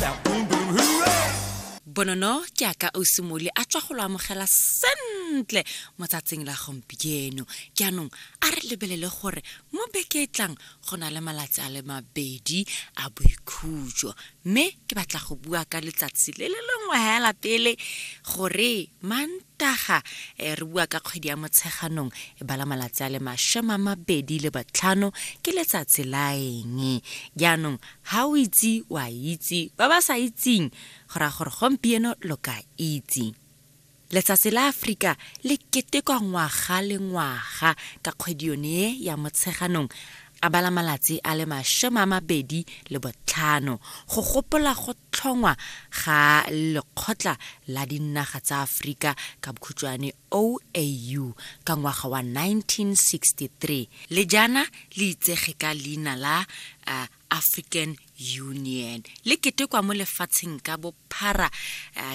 Bow, boom, boom, hooray! bonono ke a ka ausimole a tswa go lo amogela sentle mo tsatsing la gompieno jaanong a re lebelele gore mo beke e tlang go na le malatsi a le mabedi a boikhutso mme ke batla go bua ka letsatsi le le lengwe fela pele gore mant Taga, eh, re bua ka kgwedi ya Motsheganong, e bala malatsi a le mashome a mabedi le botlhano, ke letsatsi la eng? Jaanong, ha o itse, wa itse, ba ba sa itseng, go raya gore gompieno lo ka itse. Letsatsi la Aforika le ketekwa ngwaga le ngwaga ka kgwedi yone e ya Motsheganong, a bala malatsi a le mashome a mabedi le botlhano, go gopola go tlhongwa ga Lekgotla la Dinaga tsa Aforika, ka bokhutšwane OAU, ka ngwaga wa 1963, le jaana le itsege ka leina la African Union, le ketekwa mo lefatsheng ka bophara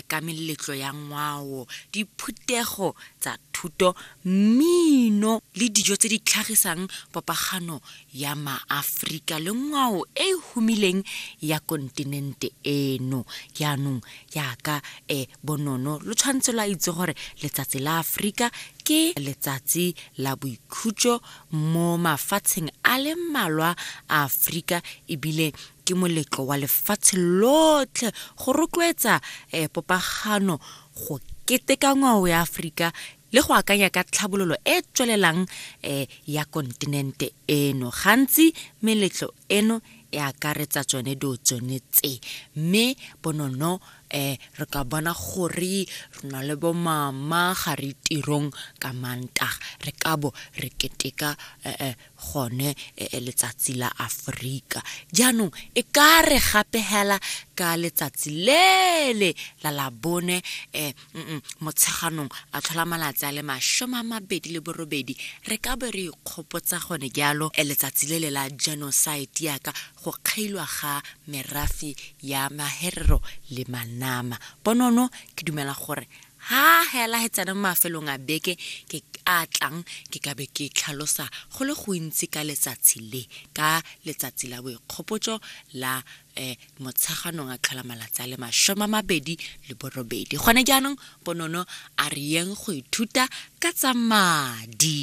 ka meletlo ya ngwao, diphuthego tsa thuto, mmino le dijo tse di tlhagisang popagano ya maAforika le ngwao e e humileng ya kontinente eno. Jaanong, jaaka eh, bonono lo tshwanetse lwa itse gore letsatsi la Aforika ke letsatsi la boikhutso mo mafatsheng a le mmalwa a Aforika ebile ke moletlo wa lefatshe lotlhe go rotloetsa eh, popagano go keteka ngwao ya Aforika le go akanya ka tlhabololo e e tswelelang um ya kontinente eno gantsi meletlo eno e akaretsa tsone dilo tsone tse mme bonono um re ka bona gore re na le bomama ga re tirong ka mantaga re ka bo re keteka um gone letsatsi la Aforika. Jaanong e ka re gape hela ka letsatsi lele la labone eh, mm -mm, motsheganong a tlhola malatsi a le masome a mabedi le borobedi re ka be re ikgopotsa gone jalo eh, letsatsi lele la genocide yaka go kgailwa ga merafi ya maherero le manama ponono ke dumela gore Ha hela he tsena mo mafelong a beke ke a tlang ke ka be ke tlhalosa go le gontsi ka letsatsi le ka letsatsi la boikgopotso la eh, motsheganong a tlhola malatsi a le masome a mabedi le borobedi gone jaanong bonono a re yeng go ithuta ka tsa madi